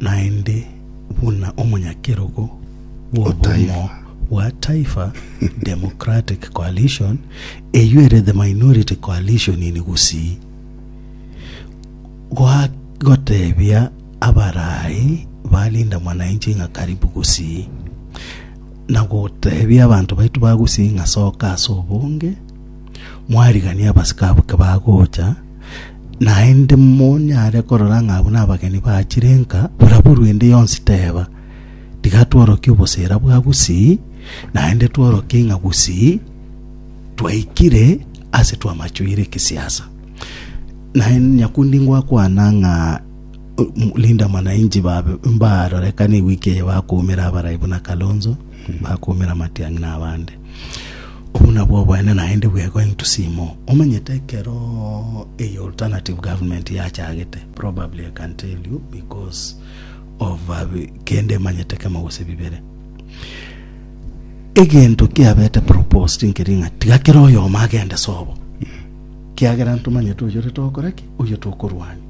Naende buna omonyakerogo bw'obomo bwa Taifa Democratic Coalition, eyio ere the minority coalition in Gusii, goa gotebia abaraai ba Linda Mwananchi ng'a karibu Gusii, na gotebia abanto baito ba Gusii ng'a soka ase obonge, Mwariganie abasike abwo kebagocha, naende monyare korora ng'a abwo nabageni bachire nka. Oraborwe ende yonsi teba, Tiga tworokie obosera bwa gusii, naende tworokie ng'a gusii twaikire ase twamachwire ekesiasa. Naende nyakundi ngwakwana ng'a o- m- Linda Mwananchi babe- mbarorekane ewiki eye bakoumera abarai buna Kalonzo, bakoumera Matiang'i na abande. Obwo nabwo obwene naende we going to see more. Omanyete ekero eye alternative government yachagete, probably I can tell you because of uh, kende emanyete kemo gose bibere. Egento kiabete proposed nkeri ng'a tiga kera oyomo agende sobo. Kiagera ntomanyete oyo tokora ki, oyo tokorwania.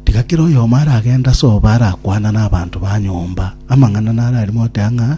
Tiga kera oyomo aragenda sobo arakwana na abanto ba nyomba amang'ana nararimo otea ng'a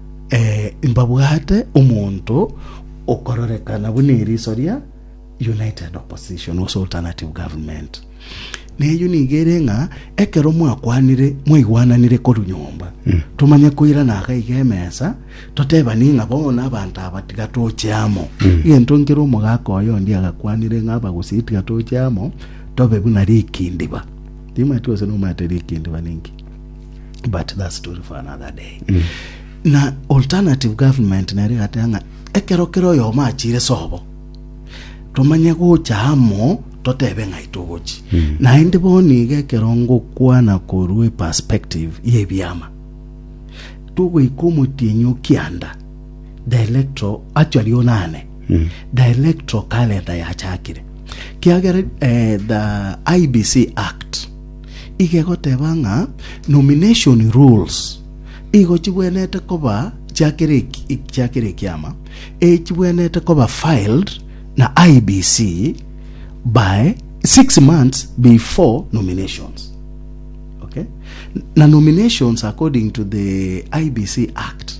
Ee, mbabwate omonto okororekana buna eriso ria United Opposition gose Alternative Government. Na eyio nigo ere ng'a ekero mwakwanire mwaigwananire korwa nyomba tomanye koirana iga iga emesa totebani ng'a bono abanto aba tiga toche amo egento nkere omogaka oyo onde agakwanire ng'a abagusii tiga toche amo tobe buna rikindiba timwati gose nomanyete rikindiba ninki but that story for another day mm. na alternative government nere gatea ng'a ekero kere oyomo achire sobo tomanye gocha amo totebe ng'ai togochi mm. naende boni iga ekero ngokwana korwa eperspective yebiama togoika omotienyi okianda the electro actually onane mm. the electro calendar yachakire kiagera eh, the ibc act Iga egoteba ng'a nomination rules igo chibwenete koba chia kera chia kera ekiama, echibwenete koba filed na IEBC by six months before nominations. Okay? Na nominations according to the IEBC Act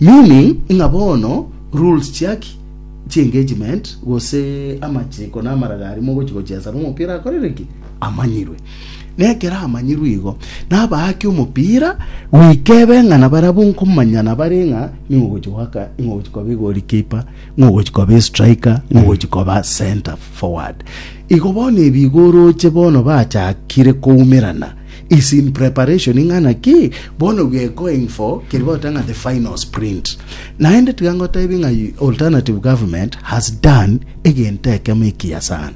Meaning, ng'a bono rules chiaki chi engagement gose amachiko na amaraga aria mogochia gochesa nomopira akorire ki? Amanyirwe. Na ekero amanyirwe igo, nabaake omopira goika ebe ng'a na barabwo nkomanyana bare ng'a ning'o ogochia goaka, ning'o ogochia koba egolikipa, ning'o ogochia koba estriker, ning'o ogochia koba centre forward. Igo bono ebi igo oroche bono bachakire koumerana. Is in preparation ing'ana ki? Bono we are going for keri bagoteba ng'a the final sprint. Naende tiga ngotebi ng'a alternative government has done egento ekemo ekiya sana.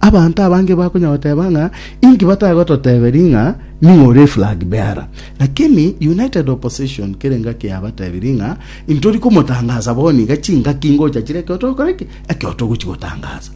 Abanto abange bakonya goteba ng'a inki batagototeberi ng'a ning'o ore flag bearer. Lakini united opposition kere ngaki yabatebiri ng'a intori komotangasa bono iga chingaki ngocha chire ekero togokora ki ekero togochi gotangaza.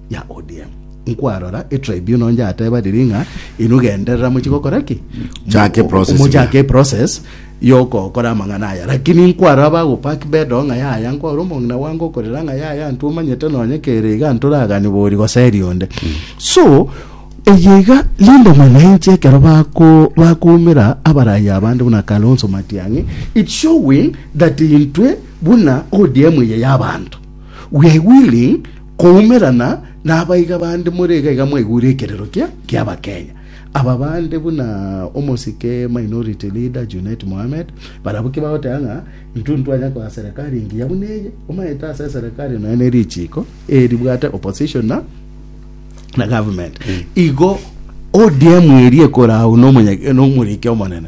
ya ODM. Nkwarora etribunal yateba riria ng'a inwe genderera mochie gokora ki? Chake process Mochake eprocess yokokora amang'ana aya lakini nkwaro abagopack bedo ng'a yaya nkwaro omong'ina bwange okorera ng'a yaya ntwe omanyete nonye kere iga ntoragani bori goseri onde so eye iga linde mwananchi ekero bako bakumera abarayi abande buna kalonso matiang'i it's showing that intwe buna odm eye yabanto Gwegwire koumerana nabaiga bande more iga iga mwaigure ekerero kia kia abakenya. Aba bande buna omosike minority leader Junet Mohamed barabwo ki bagoteba ng'a intu ntwanya koa serikali engiya buna eye omaete ase serikali nonya ne richiiko eri ribwate opposition na na government. Igo ODM eri ekora au nomonye nomoriki omonene.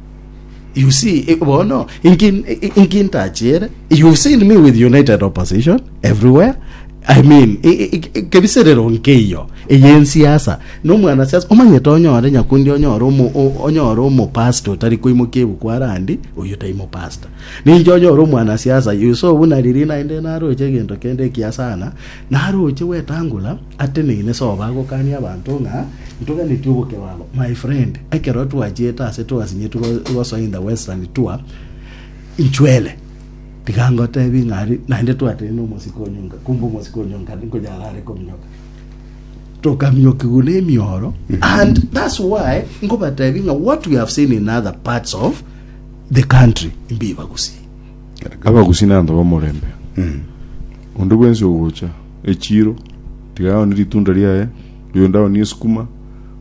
You see, eh, bono inki- i- inki ntachere you seen me with united opposition everywhere I mean, i- i- i- i- kebiserero nkeiyo eyensiasa nomwana siasa omanyete onyore nyakundi onyore omo- o- onyore omopasta otari koimokia ebuku arandi oyo tai mopasta ninche onyore omwana siasa yuso buna riri naende naroche egento kende ekiasana naroche gwetangula Ateneine soa bagokania abanto ng'a ntoganeti obokero abo. My friend, ekero twachiete ase twasinyeti gosoa in the western tour, inchwere tiga ngotebi ng'a ari naende twateine omosike onyonga, kumbe omosike onyonga nkoyarare kominyoka tokamiokigwa na emioro and that's why nkobatebi ng'a what we have seen in other parts of the country mbibagusi abagusi na abanto b'omorembe onde bwensi ogocha Echiro, tiga aonie ritunda riaye, oyonde aonie esukuma,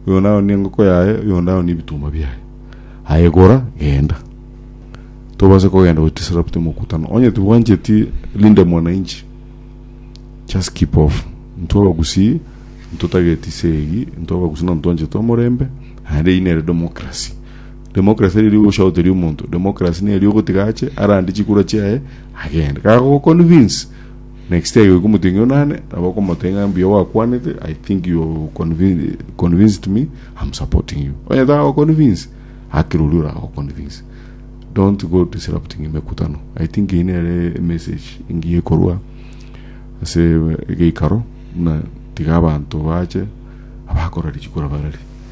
oyonde aonie engoko yaye, oyonde aonie ebitumba biaye. Aye gora, genda. Tobase kogenda gochia Sarapta omokutano. Onye tibwancheti linde mwananchi, just keep off. Intwe abagusii, intwe tageti ise eyii, intwe abagusii nabo twanchete omorembe, naende eyii nere democracy. Democracy teri ery'ogoshaoteria omonto, democracy neria ogotiga ache, arande chikura chiaye, agende. Kagogo convince, Next time okomotweng'ia ng'a onane, nabo okomotebia ng'a mbuya gwakwanete, I think you have convi- convinced me, I'm supporting you. Onye tagoconvince, akire oria oragoconvince. Don't go disrupting emekutano. I think eyio nere emessage engiya ekorwa ase egeikaro buna tiga abanto bache abakorari chikurabarari.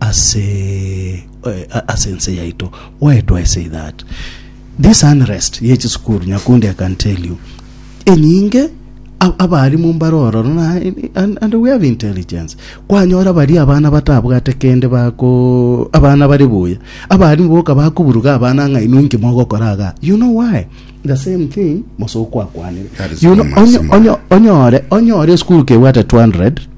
ase ase ense yaito why do i say that this unrest ye chisukuru nyakundi i can tell you enyinge abarimu mbare ororo na and we have intelligence kwanyora bari abana batabwate kende bako abana bari buya abarimu boka bakuburuga abana ng'a inwe inki mogokora aga you know why the same thing mosoko akwanire you know onyo onyore onyore school kebwate 200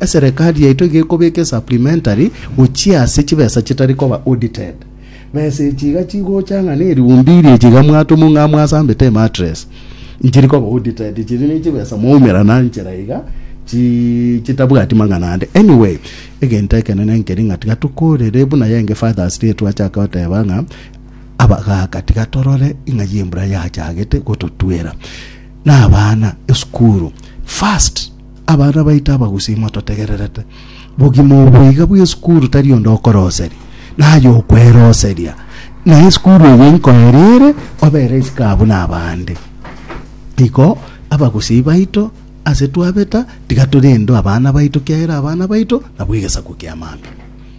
Eserekari yaito iga ekobeka esupplementary gochia ase chibesa chitari koba audited. Besa echi iga chigocha ng'a ne eriumbi iri echi iga mwatoma ng'a mwasambete emattress nchiri koba audited chiri ne chibesa mwaumera na nchera iga chi chitabwati mang'ana ande. Anyway, egento ekenene nkeri ng'a tiga tokorere buna yenge Father's Day twachaka goteba ng'a abagaka tiga torore ing'ai embura yachagete gototwera na abana esukuru first. Abana baito abagusii mototegererete. Bogima obo iga bw'esukuru tari onde okoroseria, naye okweroseria. Na esukuru eye inkoerere obere isiko abwo n'abande. Igo abagusii baito ase twabeta tiga torendwe abana baito kiagera abana baito nabwo egesaku ki'amambia.